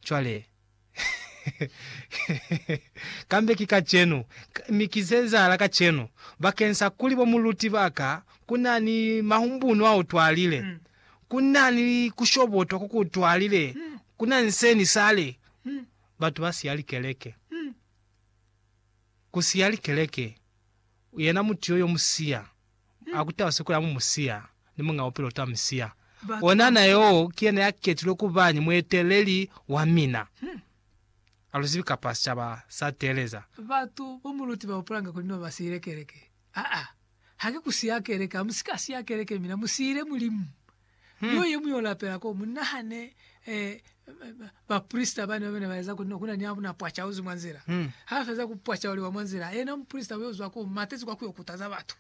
Cwale, kambe ki kacenu, mi ki ze ezahala kacenu, bakeng sa kuli bo muluti ba ka, ku na ni mahumbunu a utwalile, ku na ni ku shobotwa ko ku utwalile, ku na ni seni sale, batu ba siya likeleke. Ku siya likeleke, yena mutu yo yo mu siya. a kutaha siko ya mumusiya ni muñ'a bupilo ta misiya. Onana yo ki yena ya ketilwe ku ba ni mueteleli wa mina. A lu zibi kapa sicaba sa teeleza. Batu bo mu luti ba hupulanga kuli no ba siile keleke. Aa, haki ku siya keleke. Hamu si ka siya keleke mina mu siile Mulimu. Yo ye muñwi o lapela ko, mu nahane baprisita bane bane ba eza ku ne ku na ni a na pwaca uzi mwa nzila. Ha feza ku pwaca oli wa mwa nzila, yena muprisita yo zwa ko, matezi kwa ku yo kutaza batu.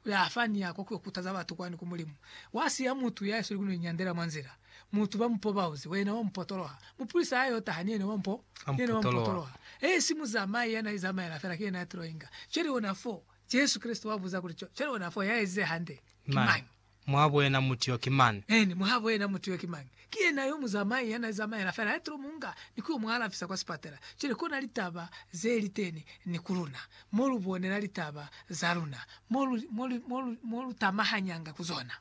Kuli a fa ni ya kwa ku yo kutaza batu kwani ku Mulimu. Wa siya mutu ya isweli ku no inyandela mwa nzila. Mutu ba mu poba uzi, yena wa mu potoloha. Muprisita ha yo taha, ni yena wa mu potoloha. He si muzamai ya na izamaela fela, ki yena ya tilo inga. Cwale ona foo, Jesu Kreste wa buza kuli, Cwale ona foo, ya ezize hande, ki mañi? Muhabo yena mutu yo ki mañi? Eeni, muhabo yena mutu yo ki mañi? Ki yena yo muzamai ya na zamaela fela, ya tilo mu nga ni ku yo mu alafisa kwa sipatela. Cwale kona litaba ze li teni ni ku luna, mo lu bonela litaba za luna, mo lu, mo lu, mo lu, mo lu tamahanyanga ku zona.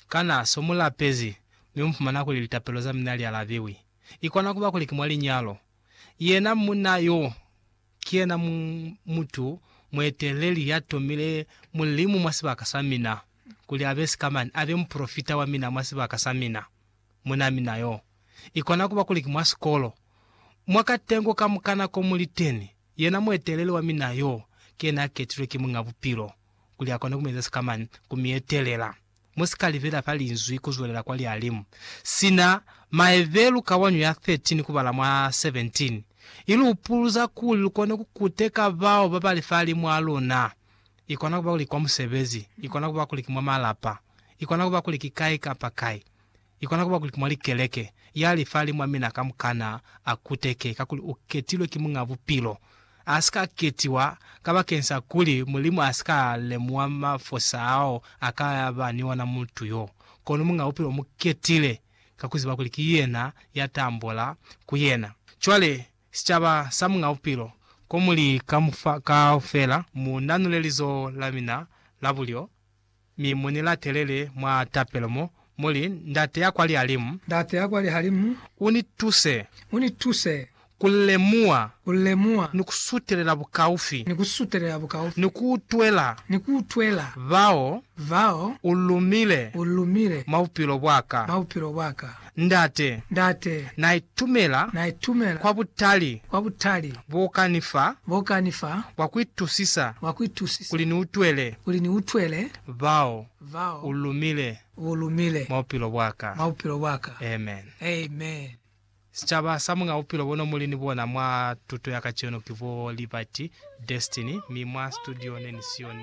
Kana so mu lapezi, mi mu fumana kuli litapelo za mina li alabiwi? I kona kuba kuli ki mwa linyalo. Yena munna yo. Ki yena mu, mutu mueteleli ya tomile Mulimu mwa sibaka sa mina, kuli abe sikamani, abe mupolofita wa mina mwa sibaka sa mina. Munaa mina yo. Ikona kuba kuli ki mwa sikolo, mwa katengo kamukana ko mu li teni, yena mueteleli wa mina yo ki yena a ketilwe ki Muñ'a Bupilo, kuli akone ku mu eza sikamani, ku mi etelela. Mu si ka libela fa Linzwi ku zwelela kwa Lialimu, sina Maebelu kawanyo ya 13 kubala mwa 17 i lu upuluza kuli lu kone ku kuteka bao ba ba li fahalimu a luna. I kona ku ba kuli ki kwa musebezi, i kona ku ba kuli ki mwa malapa, i kona ku ba kuli ki kai kapa kai. Ikona kuba kuli mwa likeleke, ya li fa limwa mina kamukana a kuteke kakuli u ketilwe ki Muñ'a Bupilo. A si ka ketiwa kabakeng sa kuli Mulimu a si ka lemuha mafosa ao a ka ba ni ona mutu yo. Kono Muñ'a Bupilo u mu ketile ka ku ziba kuli ki yena ya ta ambola ku yena. Cwale, sicaba sa Muñ'a Bupilo, ko muli kaufela, mu nanule lizoho la mina la bulyo. Mi mu ni latelele mwa tapelo mo mu li, Ndate ya kwa Lihalimu. Ndate ya kwa Lihalimu. U ni tuse. U ni tuse. Ku lemuha. Ku lemuha. Ni ku sutelela bukaufi. Ni ku sutelela bukaufi. Ni ku utwela. Ni ku utwela. Bao. Bao. U lumile. U lumile. Mwa bupilo bwa ka. Mwa bupilo bwa ka. Ndate. Ndate. Na itumela. Na itumela. Kwa butali. Kwa butali. Bo ka ni fa. Bo ka ni fa. Bwa ku itusisa. Bwa ku itusisa. Kuli ni utwele. Kuli ni utwele. Bao. Bao. U lumile. U lumile. Mwa bupilo bwa ka. Mwa bupilo bwa ka. Amen. Amen. Sicaba sa mwa bupilo bo no mu li ni bona mwa tuto ya kacenu ki bo Liberty, Destiny, mi mwa situdio ne ni siyo ni.